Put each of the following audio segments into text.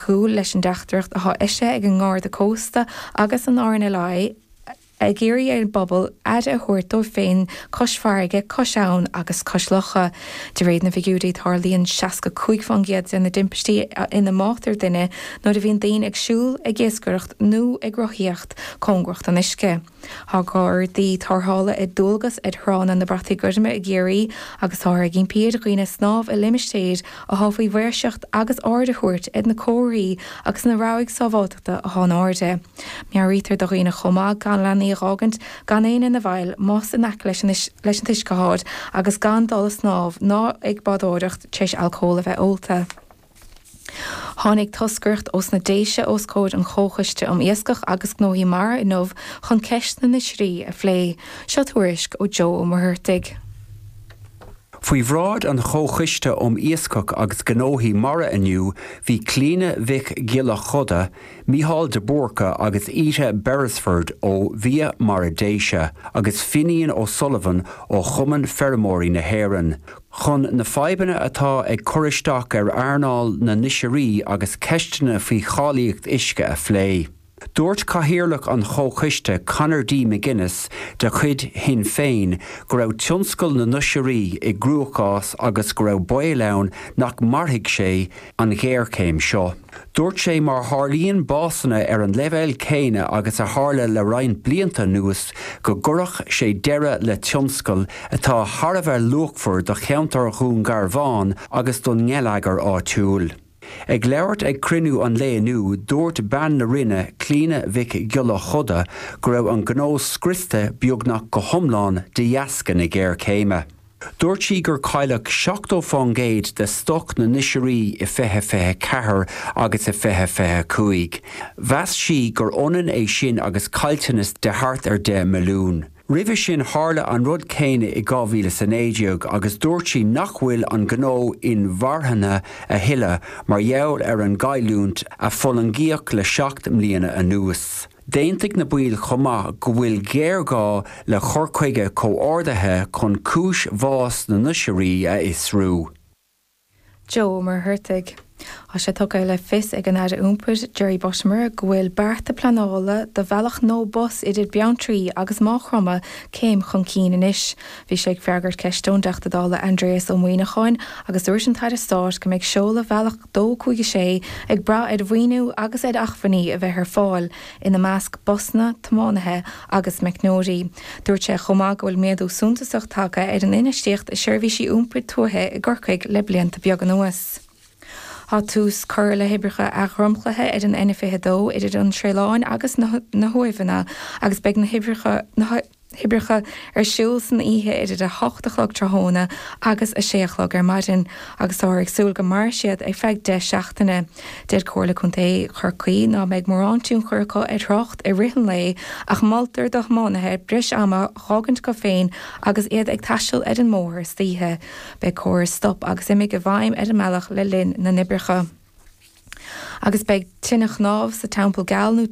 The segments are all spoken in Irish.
gcúl leis an dteachtaireacht atá eisithe ag an nGarda Cósta agus an RNLI ag iarraidh ar an bpobal aire a thabhairt dóibh féin cois farraige, cois abhann agus cois locha. De réir na bhfigiúirí, tarlaíonn 65% de na dtimpistí ina mbáitear duine nuair a bhíonn daoine ag siúl, ag iascaireacht nó ag rothaíocht cóngarach don uisce. Tá gardaí tarrthála ar dualgas ar thránna na Brataí Goirme i gCiarraí agus táthar ag impí ar dhaoine snámh i limistéir atá faoi mhaoirseacht agus aird a thabhairt ar na comharthaí agus na rabhaidh sábháilteachta atá in airde. Meabhraítear do dhaoine chomh maith gan leanaí a dh'fhágaint gan éinne ina bhfeighil más in aice leis an t-uisce atáid agus gan dul ag snámh ná ag bádóireacht tar éis alcól a bheith ólta. Tháinig toscaireacht os na Déise os comhair an Chomhchoiste um Iascach agus Gnóthaí Mara inniu chun ceist na n-oisrí a phlé. Seo tuairisc ó Joe Ó Muircheartaigh. Faoi bhráid an Chomhchoiste um Iascach agus Gnóthaí Mara inniu bhí Clíona Mhic Giolla Chuda, Micheál de Búrca agus Íde Beresford ó Bhia Mara na Déise agus Fínín O'Sullivan ó Chumann Feirmeoirí na hÉireann, Chun na fadhbanna atá ag cur isteach ar earnáil na n-oisrí agus ceisteanna faoi cháilíocht uisce a phlé, dúirt Cathaoirleach an Chomhchoiste, Conor D. McGuinness de chuid Shinn Féin, go raibh tionscal na n-oisrí i gcruachás agus go raibh baol ann nach mairfidh sé an ghéarchéim seo. Dúirt sé, Má tharlaíonn básanna ar an leibhéal céanna agus a tharla le roinnt blianta anuas, go gcuirfeadh sé deireadh le tionscal atá thar a bheith luachmhar do cheantar Dhún Garbháin agus don ngeilleagar áitiúil. Ag labhairt ag cruinniú an lae inniu, dúirt Bean na Rinne, Clíona Mhic Giolla Chuda, go raibh an gnó scriosta beagnach go hiomlán de dheasca na géarchéime. Dúirt sí gur cailleadh 70% de stoc na n-oisrí i 2024 agus i 2025. Mheas sí gur ionann é sin agus caillteanas de thart ar 10 milliún. Roimhe sin tharla an rud céanna i 2019 agus dúirt sí nach bhfuil an gnó inmharthana a thuilleadh mar gheall ar an gcailliúint a fulaingíodh le seacht mbliana anuas. D'aontaigh na baill chomh maith go bhfuil géarghá le cur chuige comhordaithe chun cúis bhás na n-oisrí a fhiosrú. Joe Ó Muircheartaigh. Tá sé tugtha le fios ag an Aire Iompair, Jerry Buttimer, go bhfuil bearta pleanála do bhealach nua bus idir Beanntraí agus Maigh Chromtha céim chun cinn anois. Bhí sé ag freagairt ceiste ón dTeachta Dála Aindreas Ó Muíneacháin agus dúirt an tAire Stáit go mbeidh seoladh Bhealach 256 ag brath ar mhaoiniú agus ar acmhainní a bheith ar fáil, ina measc busanna, tiománaithe agus meicneoirí. Dúirt sé chomh maith go bhfuil méadú suntasach tagtha ar an infheistíocht i seirbhísí iompair tuaithe i gCorcaigh le blianta beag anuas. Tá tús curtha le hoibreacha athdhromchlaithe ar an N22 idir an Sraoilán agus na hUamhanna agus beidh na hoibreacha. hoibreacha ar siúl san oíche idir a hocht a chlog tráthnóna agus a sé a chlog ar maidin agus táthar ag súil go mairfidh siad ar feadh deich seachtaine. Deir Comhairle Chontae Chorcaí ná beidh mórán tionchair acu ar thrácht i rith an lae ach moltar do thiománaithe breis ama a fhágaint acu féin agus iad ag taisteal ar an mbóthar istoíche. Beidh córas stop agus imigh i bhfeidhm ar an mbealach le linn na n-oibreacha. Agus beidh tine chnámh sa Teampall Geal nó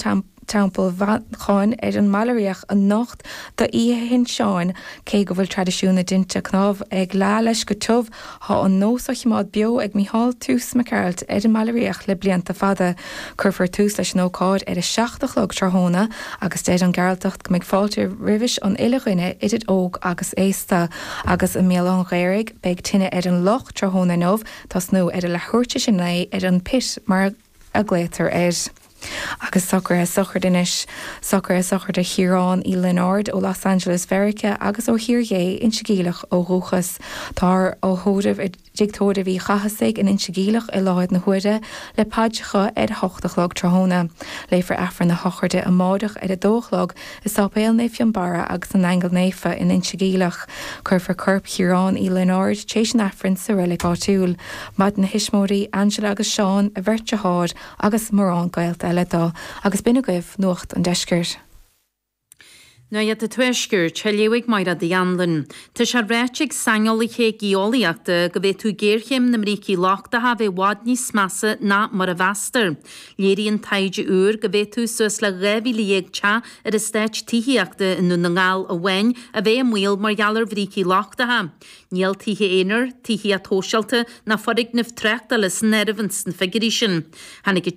Teampall Mhancháin ar an mBaile Riabhach anocht d'Oíche Shin Seáin, cé go bhfuil traidisiún na dtinte cnámh ag leá leis go tiubh, tá an nós á chimeád beo ag Mícheál Toose Mac Gearailt ar an mBaile Riabhach le blianta fada. Cuirfear tús leis an ócáid ar a seacht a chlog tráthnóna agus deir an Gearaltach go mbeidh fáilte roimis an uile dhuine idir óg agus aosta. Agus i mBéal Átha an Ghaorthaidh beidh tine ar an loch tráthnóna inniu, tosnú ar a leathuair tar éis a naoi ar an bpit mar a ghlaotar air. Agus socraithe sochraide anois, socraithe sochraide Chiaráin Uí Lionáird ó Los Angeles Mheiriceá agus ó Thír Ghé Inse Geimhleach ó dhúchas, táthar á thórramh i dtigh tórraimh Uí Chathasaigh in Inse Geimhleach i láthair na huaire le paidreacha ar a hocht a chlog tráthnóna, léifear Aifreann a shochraide amáireach ar a dó a chlog, I Sáipéal Naomh Fionnbarra agus na nAingeal Naofa in Inse Geimhleach, cuirfear corp Chiaráin Uí Lionáird tar éis an Aifrinn sa reilig áitiúil. Maireann a thuismitheoirí, Angela agus Seán, a bheirt deartháir agus mórán gaolta eile do, agus b'in agaibh Nuacht an Deiscirt. Nuacht an Tuaiscirt, a léifidh Máiréad Uí Anluain. Tá sé ráite ag saineolaithe geolaíochta go bhféadfadh géarchéim na mbrící lochtacha a bheith i bhfad níos measa ná mar a mheastar. Léiríonn taighde úr go bhféadfadh suas le 12,000 teach ar eastáit tithíochta i nDún na nGall amháin a bheith i mbaol mar gheall ar bhrící lochtacha. Níl tithe aonair, tithíocht shóisialta ná foirgnimh tráchtála san áireamh ins na figiúirí sin. Tháinig an.